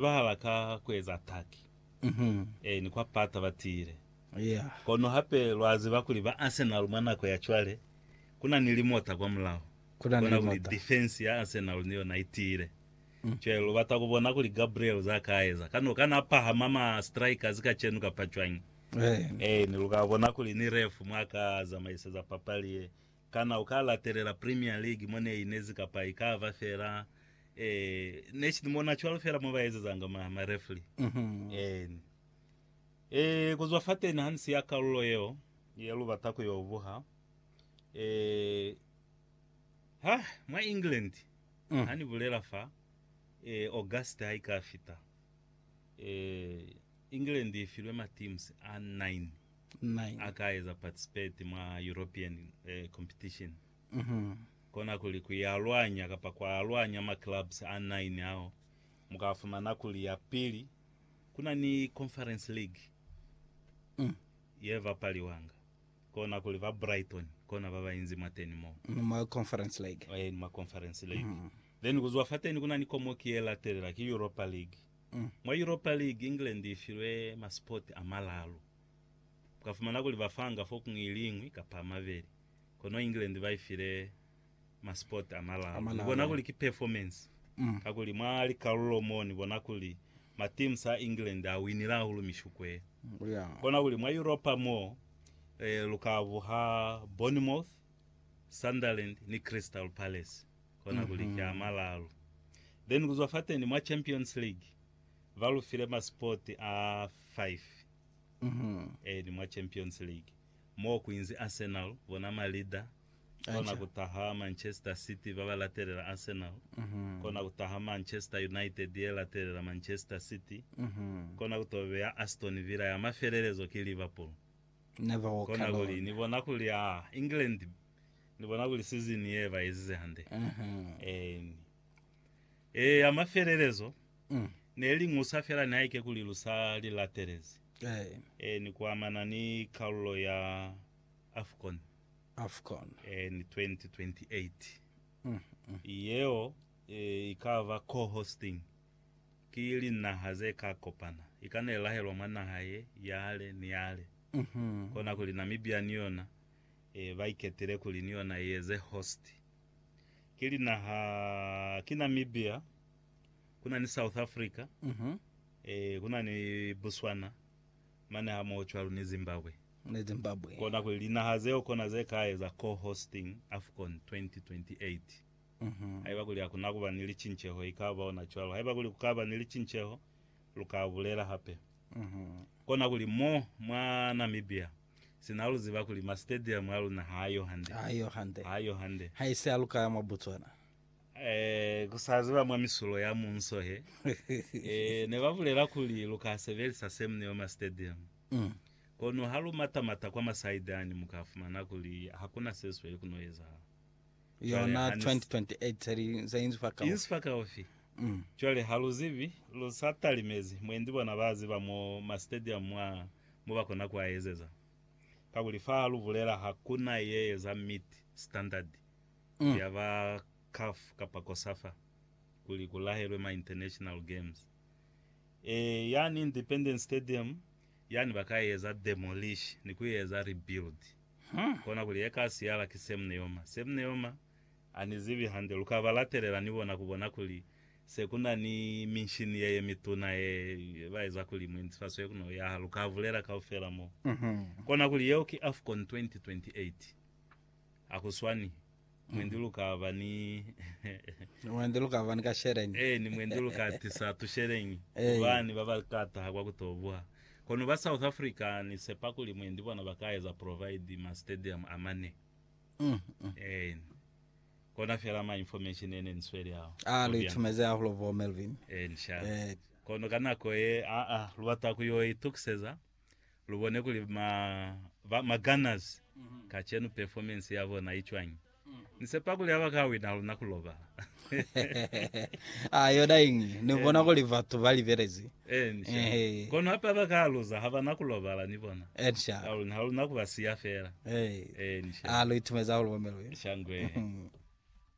Bahala ka kueza ataki e ni kwa pata ba tiile. Kono hape lwa ziba kuli ba Arsenal mwa nako ya cwale kuna ni limota kwa mulaho. Kona kuli defense ya Arsenal ni yona i tiile. Cwale lu bata ku bona kuli Gabriel za ka eza. Kana u ka na pahama ma strikers kacenu kapa cwañi? E ni lu ka bona kuli ni ref mwa ka zamaiseza papali ye. Kana u ka latelela Premier League mo ne inezi kapa i ka ba fela eh, next mo na cwalo fela mo ba ezezanga ma, ma referee? Eh, eh, ku zwa fateni ha ni siya kalulo yeo ye lu bata ku yo buha, eh, ha, mwa England, ha ni bulela fa, eh, August ha i ka fita, eh, England i filwe ma teams a 9. 9. a ka eza participate mwa European eh, competition kona kuli ku ya lwanya kapa kwa lwanya ma clubs a 9 ao mu ka fumana kuli ya pili ku na ni Conference League ye bapaliwanga kona kuli ba Brighton kona ba ba inzi mwateni moo Ni mwa Conference League. eh, ni ma Conference League then ku zwa fateni ku na ni komoki ye latelela ki Europa League Mwa Europa League, England i filwe masipoti a malalu. U ka fumana kuli ba fanga fokuñwi i li ñwi kapa a mabeli, kono England ba i file masipoti a malalu. Ni bona kuli ki performance, kakuli mwa likalulo mo ni bona kuli ma teams a England a winile hahulu mishuko ye. Kona kuli mwa Europa mo, lu ka buha Bournemouth, Sunderland ni Crystal Palace. kona kuli ki a malalu. Then kuzwa fateni mwa Champions League ba lu file ma spot a five. Eeni, mwa Champions League. Moo kuinzi Arsenal, bona ma leader, kona kutaha Manchester City ba ba latelela Arsenal, kona kutaha Manchester United ye latelela Manchester City, kona kuto beya Aston Villa ya mafelelezo ki Liverpool. Never walk alone. Kona kuli ni bona kuli aa, England Ni bona kuli sizini ye ba ezize hande. Eeni. Ee, ya mafelelezo, ne li ñusa fela nihaike kuli lu sa li latelezi. Eeni, kuamana ni kalulo ya Afcon. Afcon. Eeni, 2028. Yeo i ka ba co-hosting ki linaha ze ka kopana. I ka ne lahelwa mwa naha ye, yale ni yale. Kona kuli Namibia ni yona e ba iketile kuli ni yona i eze host, ki linaha ki Namibia, ku na ni South Africa, e ku na ni Botswana, mane hamoho cwalo ni Zimbabwe. Ni Zimbabwe. Kona kuli linaha zeo kona ze ka eza co-hosting Afcon 2028. Haiba kuli hakuna kuba ni licinceho, i ka ba ona cwalo. Haiba kuli ku ka ba ni licinceho, lu ka bulela hape. Kona kuli mo mwa Namibia, Sina lu ziba kuli ma stadium a luna ha ayo hande. Ha ayo hande. Ha ayo hande. Ha ise a lukaya mwa Botswana. Eh, ku sa ziba mwa misulo ya munso he. Eh, ne ba bulela kuli lu ka sebelisa se mne yo ma stadium. Mm. Kono ha lu mata-mata kwa ma side ani, mu ka fumana kuli ha ku na se sweli ku no ezahala. Cwale yona ha ni s- 2028 se li se inzi fa kaufi. Inzi fa kaufi. Mm. Cwale ha lu zibi, lu sa talimezi, mwendi bona ba ziba mo ma stadium mwa, mo ba kona ku a ezeza. Kakuli fa ha lu bulela ha ku na ye eza meet standard Mm. ya ba CAF kapa Cosafa kuli ku lahelwe ma international games. E, yani Independence Stadium Yani ba ka eza demolish ni ku eza rebuild. Kona kuli ye ka siyala ki Semneoma. Semneoma, a ni zibi hande. Lu ka ba latelela ni bona ku bona kuli se ku na ni minshini ye ye mituna ye ba eza kuli muinzifaso ye kona ku yaha. Lu ka bulela kaufela mo. Kona kuli yeo ki Afcon 2028. Akuswani. Mwendi lukaba ni. Ni mwendi lukaba ni kasheleñi. Eh, ni mwendi lukatisa tusheleñi. Eh. Kubani baba kataha kwa kutobuha. Kono ba South Africa ni sepa kuli mwendi bona ba ka eza provide ma stadium a mane. Mm, mm. Eh. Kona fela ma information ene ni sweli ao. Ah, lu itumeze hahulu bo Melvin. Eh, nshaba. Eh. Kono ka nako ye, ah, ah, lubata ku yo itukiseza. lu bone kuli ma, ba, ma Gunners kacenu performance ya bona i cwañi. Ni sepa kuli ha ba ka wina luna ku lobala. Ah, yona iñi, ni bona kuli batu ba libelezi. Eh, ni sha. Ehe. Kono hape ha ba ka luza, ha ba na ku lobala, ni bona. Eh, ni sha. Ha luna, ha luna ku ba siya fela. Eh. Eh, ni sha. Ah, lu itumeza hahulu, Bomelwi. Shangwe. Mhm.